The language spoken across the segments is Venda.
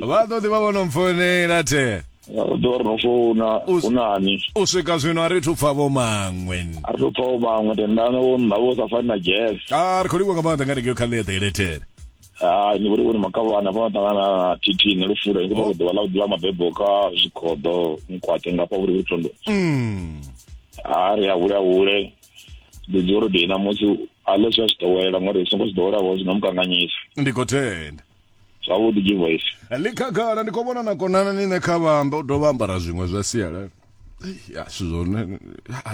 vha ḓo ḓi vha vho no mpfounela the ḓo ri no founa Us- u nani u swika zwino a ri thu pfa vho maṅwe a ri to pfa u maṅwe tendana wo nna vho sa fani na jazz a ri khou livhuwa nga maanḓa nga rengeo kha ḽeṱhe elethere hai ni vhori vhone makavhana fana ṱangana na tt ne lufula ni khou ḓuvha ḽa u ḓivha mabebo ka zwikhoḓo nkwate ngafha vhuri vhuri thondo Mm. ha ri a hule a hule ndi dzi uri ndi namusi a ḽe zwi a zwi ḓowela ngori songo zwi ḓowela vho zwi no mukanganyisa ndi khou tenda zwavhuḓi givoisi ḽi khagala ndi khou vhona na konana ni ne kha vhamba u dovha ambara zwiṅwe zwa sialala ya zwithu zwone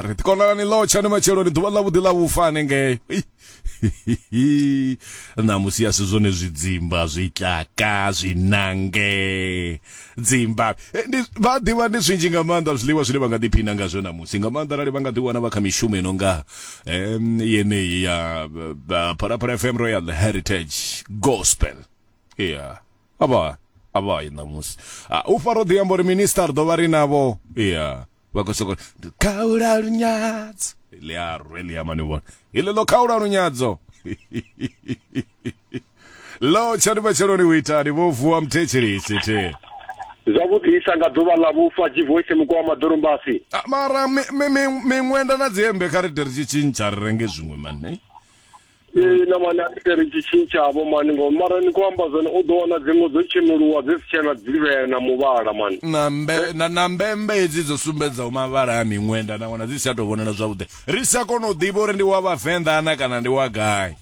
ri ḓi konana ni ḽotsha ni matshelo ni ḓuvha ḽavhuḓi ḽa vhufa hanengei ṋamusi ya si zwone zwidzimba zwitlaka zwinange dzimba eh, vha ḓivha ndi zwinzhi nga maanḓa zwiḽiwa zwine vha nga ḓiphina ngazwo ṋamusi nga maanḓa arali vha nga ḓiwana vha kha mishumo ino nga um yeneyi ya phalaphala fm royal heritage gospel ya avha avha i ṋamusi ah, u faro ḓi amba uri minister ḓo vha ri navho ya vha khou soko khaula lunyadzo ḽi a rwe ḽi ama ni vhona iḽi ḽo khaula lunyadzo ḽo tshani matsheloni u itani vho vuwa mthetshelisi the zwavhuḓisa nga ḓuvha ḽa vhufa jivoice muko wa maḓolumbasi ah, mara miṅwenda na dzihembe kha ri de ri tshi tshintsha ri renge zwiṅwe mane ee na mani a itere tshitshini tshavho mani ngo mara ni khou amba zwone u ḓo wana dziṅwe dzo tshenuliwa dzi si tshena dzivhea na muvhala mani na mbe na, na mbembe hedzi dzo sumbedzaho mavhala a miṅwenda na wana dzi si tsha tou vhonala zwavhuḓi ri sa kona u ḓivha uri ndi wa vhavenḓa ana kana ndi wa gai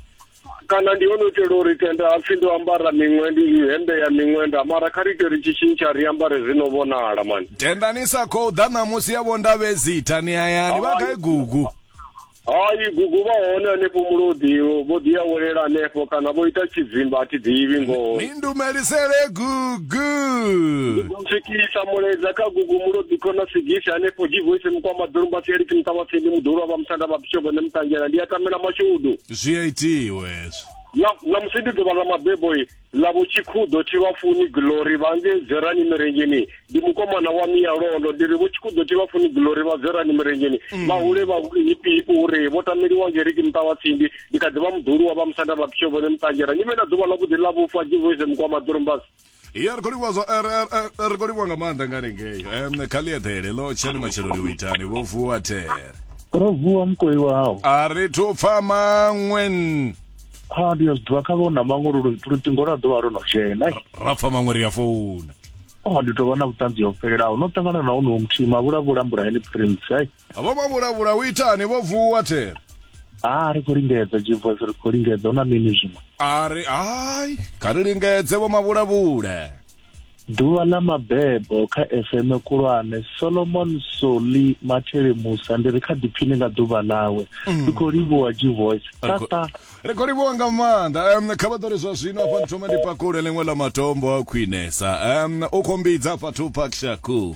kana ndi hone u itela uri tenda hapfi ndo ambara miṅwenda i hembe ya miṅwenda mara kha ri ite ri tshitshini tsha ri ambare zwi no vhonala mani tendani sa khou ḓa ṋamusi ya vhondavhezitha ni hayani vha gai gugu Hai gugu vha hone hanefho mulodi vho ḓi awelela hanefho kana vho ita tshidzimba a thi ḓivhi ngoho ni ndumelisele gugu swikisa muledza kha gugu mulodi khona sigisi hanefho divoice mukwama ḓorumba sieliki muṱavhatsindi muḓulu wa vha musanda vha bishop ne mutangela ndi a tamela mashudu zwi a itiwe hezwo na musi ndi ḓuvha ḽa mabebo i ḽavho tshikhuḓo thi vha funi glory vha nge dzerani mirenjeni ndi mukomana wa miya londo ndi ri vho tshikhuḓo thi vha funi glory vha dzerani mirenjeni mm. vha hule vha hipi uri vho tameliwa ngeriki muṱa wa tsindi ndi kha ḓi vha muḓuluwa vha musanda vha pitsho vhone muṱangera ni vhe na ḓuvha ḽa vhuḓi ḽa vhufa jivoise mukwama ḓurumbasi ya ri khou livhuwa zwa er, er, er, ri khou livhuwa nga maanḓa nga lengeyo um kha ḽi eḓele ḽo tshani matsheloni u itani vho vuwa there ro vuwa mukoi wao a ri thu pfa maṅwe ha ndi yo zwiḓivha kha vho na maṅwe luṱingo lwa ḓovha lwo no dzhena ra pfa maṅwe ri ya founa o ndi tovha na vhuṱanzi ho fhelelaho no ṱangana na honoho muthihi mavhulavhula mbulaheni prince ai vho mavhulavhula u itani vho vuwa thera a ri khou lingedza jivos ri khou lingedza hu na mini zwiṅwe a ri ai kha ri lingedze vho mavhulavhula Ḓuvha ḽa mabebo kha FM khulwane Solomon Soli Mathele Musa ndi ri kha ḓiphini nga ḓuvha ḽawe mm. ri khou livhuwa G Voice tata ri khou livhuwa nga maanḓa um kha vha ḓori zwa zwino afha ndi thoma ndi pakule ḽiṅwe ḽa matombo a khwinesa um u khou mbidza fhathu pakshaku